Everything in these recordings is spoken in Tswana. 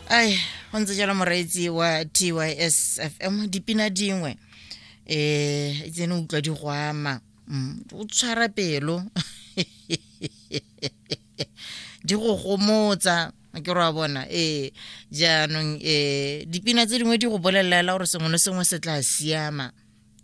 ai go ntse jalo moreetsi wa tys fm dipina dingwe um tsene utlwa di go ama Mm, o tshwara pelo di go gomotsa ke re wa bona ee jaanong um dipina tse dingwe di go bolelelela gore sengwe le sengwe se tla siama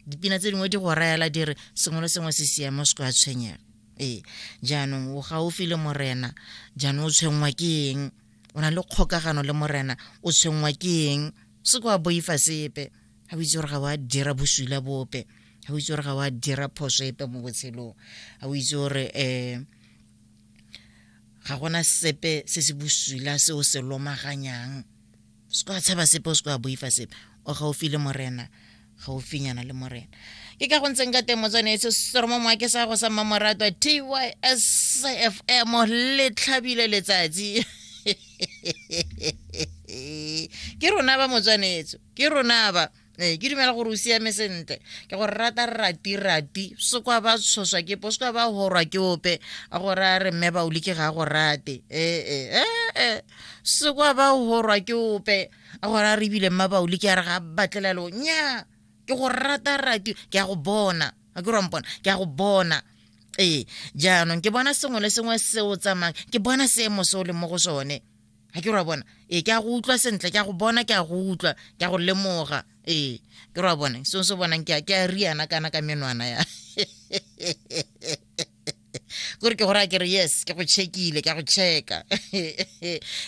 dipina tse dingwe di go rayela dire sengwe le sengwe se siamo se kwa tshwenyega ee jaanong o gaufi le morena jaanong o tshwenngwa ke eng o na le kgokagano le morena o tshwenngwa ke eng se kwa boifa sepe ga o itse gore ga wa dira bosula bope ga o itse gore ga wa dira phoso epe mo botshelong ga o itse gore um ga gona sepe se se bosula se o se lomaganyang se kwa tshaba sepe o se kwa boifa sepe o gaufi le morena gaufinyana le morena ke ka go ntseng ka teng motswane se soromo moa ke sa go sa mmamoratwa tysfm le tlhabile letsatsi ke rona ba motswanetso ke rona ba ee ke dumela gore o siame sentle ke gore rata rati rati se kwa ba tshoswa ke po se kwa ba horwa ke ope a gore a re mme baoli ke ga go rate ee ee ee e. se kwa ba horwa ke ope a gore a re ebile mma baoli ke a re ga batlelelo nya ke go rata rati ke a go bona a ke rwampona ke a go bona ee jaanong ke bona sengwe le sengwe se o tsamayang ke bona seemo se o leng mo go sone ga ke ra bona ee ke a go utlwa sentle ke a go bona ke a go utlwa ke a go lemoga ee ke ra bona seo se bonang ke a riana kana ka menwana ya kore ke gore a kere yes ke go checkile ke a go checka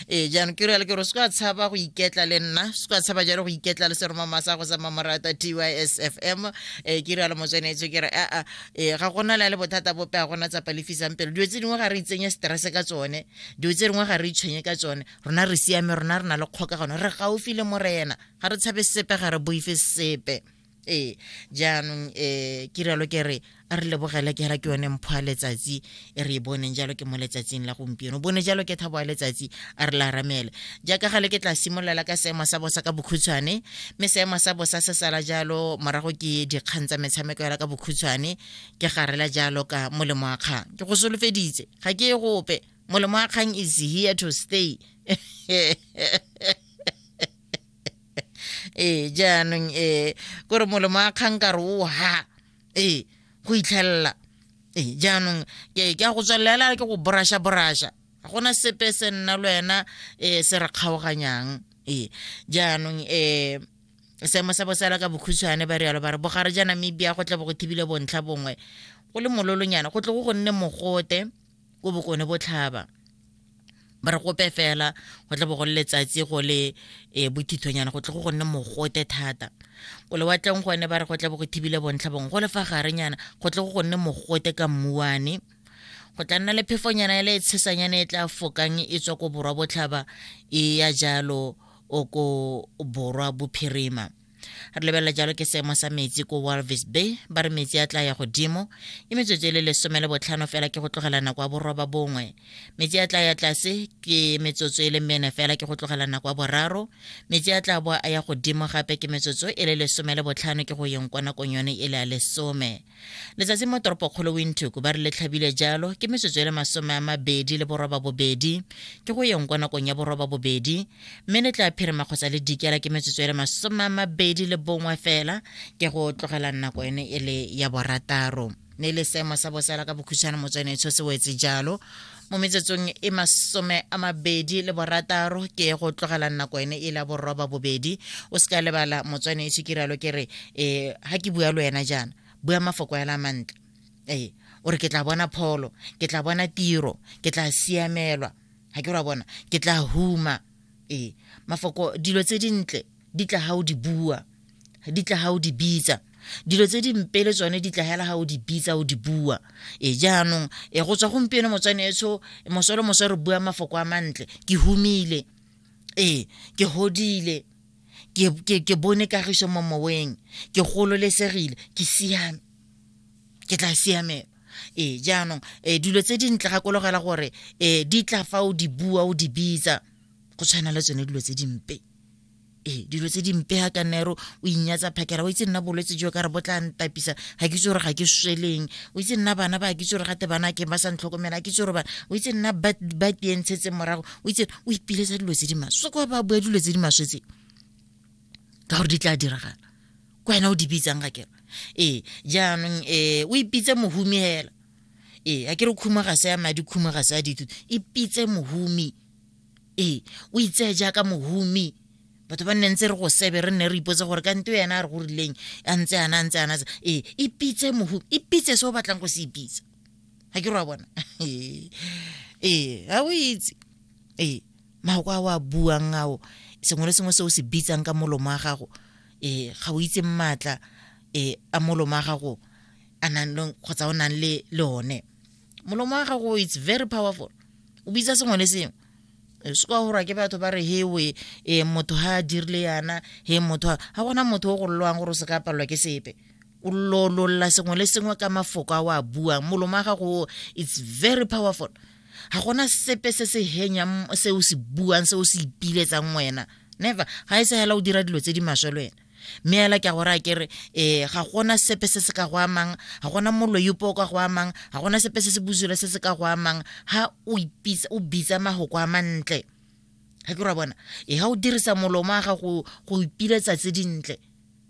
ee jaanong ke rialo ke gore se ka tshaba go iketla le nna se ka tshaba jalo go iketla le seromamasa go sa mamorata t y s f m um ke rialo motswanetse ke re aa ee ga gona le le bothata bope ga gona tsa palefisang pelo dilo tse dingwe ga re itsenye stress ka tsone dilo tse dingwe ga re itshwenye ka tsone rona re siame rona re na le kgokagano re gaufi le morena ga re tshabe sepe ga re boife sepe ee jaanong um eh, ke rialo ke re a re lebogela ke ra ke yone mpho a letsatsi e re e boneng jalo ke mo letsatsing la gompieno bone jalo ke thabo a letsatsi a re laramele jaaka gale ke tla simololela ka seemo sa bosa ka bokhutshwane mme seemo sa bosa se sala jalo morago ke dikgang tsa metshameko yala ka bokhutshwane ke garela jalo ka molemo wa kgang ke go solofeditse ga ke e gope molemo wa kgang is here to stay ee jaanong ee kore molemo wa kgang ka re o ha ee go itlhelela ee jaanong ke a go tswelela ke go borasha borasha ga gona sepe se nna le wena um se re kgaoganyang ee jaanong um seemo sa bosala ka bokhutshwane ba rialo ba re bogare ja namibia go tle bo go thibile bontlha bongwe go le mololonyana go tle go go nne mogote ko bokone botlhaba ba re gope fela go tle bo go letsatsi go le um bothithonyana go tle go go nne mogote thata ko lewatleng gone ba re go tle bo go thibile bontlha bongwe go le fa garenyana go tle go go nne mogote ka mmuane go tla nna le phefonyana e le e tshesanyana e tla fokang e tswa ko borwa botlhaba e ya jalo o ko borwa bophirima re lebelela jalo ke seemo sa metsi ko walvis bay ba re metsi a tla ya godimo ke metsotso e le lesome le botlhano fela ke go tlogela nako ya boroba bongwe metsi a tla ya tlase ke metsotso e le mene fela ke go tlogela nako ya boraro metsi a tla boa a ya godimo gape ke metsotso e le lesome le botlhano ke go yeng kwa nakong yone e le ya lesome Letsatsi mo toropokgolo Windhoek, ba re le tlhabile jalo ke metsotso e le masome a mabedi le boroba bobedi, ke go yeng kwa nakong ya boroba bobedi, mme le tla phirima kgotsa le dikela ke metsotso e le masome a mabedi le bongwe fela, ke go tlogela nako ene e le ya borataro. Ne le seemo sa bosa la ka bokhutshwane motswanetsho se wetse jalo mo metsotsong e masome a mabedi le borataro ke go tlogela nako ene e la boroba bobedi o se ka lebala motswane e sekiralo ke re um ga ke bua le wena jaana bua mafoko ela mantle ee o re ke tla bona pholo ke tla bona tiro ke tla siamelwa ga ke ra bona ke tla huma ee mafoko dilo tse dintle di tla ga o di bua di tla ga o di bitsa dilo tse di mpe le tsone di tlagela ga o di bitsa o di bua e jaanong e go tswa gompieno motswane etsho mosolo moswa re bua mafoko a mantle ke humile ee ke godile ke bone kagiso mo moweng ke gololesegile ke siame ke tla siamela ee jaanong um dilo tse di ntle gakologela gore um di tla fa o di bua o di bitsa go tshwana le tsone dilo tse dimpe ee dilo tse dimpe ga ka nero o inyatsa phakela o itse nna bolwetse jo ka re bo tla ntapisa ga ke itse gore ga ke sweleng o itse nna bana ba ke itse gore gate bana ke ba sa ntlhokomela ke itse gore bana o itse nna ba tientshetse morago o itse o ipiletsa dilo tse di maswe kwa ba bua dilo tse di maswe tse ka gore di tla diragala ko wena o di bitsang ga kere ee jaanong um o ipitse mohumi fela ee a ke re khumo ga se ya madi khumo ga se ya dithuto ipitse mohumi ee o itseye jaaka mohumi batho ba nne ntse re go sebe re nne re ipotse gore ka nte ena a re go rileng a ntse ana a ntse ana ee ipitse mohu ipitse se o batlang go se ipitsa ga ke re wa bona ee ga o itse ee mako a o a buang ao sengwe le sengwe se o se bitsang ka molomo wa gago ee ga o itse maatla ee a molomo wa gago a nang le kgotsa o nang le le one molomo wa gago it's very powerful o bitsa sengwe le sengwe se kwa gorwa ke batho ba re hewe um motho ga a dirile yana he motho ga gona motho o gololwang gore o se ka palelwa ke sepe o lololla sengwe le sengwe ka mafoko a o a buang molomo wa gago it's very powerful ga gona sepe se se henyang se o se buang se o se ipiletsang wena never ga e se fela o dira dilo tse di maswe le wena mme ela ke a go raya ke re um ga gona sepe se se ka go amang ga gona moloyopo o ka go amang ga gona sepe se se bosula se se ka go amang ga o bitsa magoko a mantle ga ke ra bona e ga o dirisa molomo a gago go ipiletsa tse dintle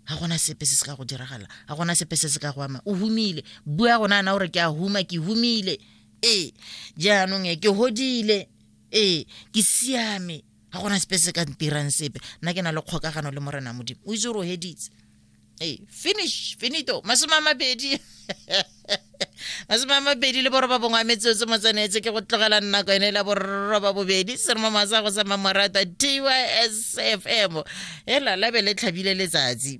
ga gona sepe se se ka go diragala ga gona sepe se se ka go ama o humile bua gona ana gore ke a huma ke humile ee jaanong e ke hodile ee ke siame ga gona sepe se ka ntirang sepe nna ke na le kgokagano le morena modimo o itse gore o heditse ee finish finito masome a mabedi masome a mabedi le boroba bongwe a metseo tse motsenetse ke go tlogela nako ene la boroba bobedi se re mo masa go sama morata tysfm e lalabe le tlhabile letsatsi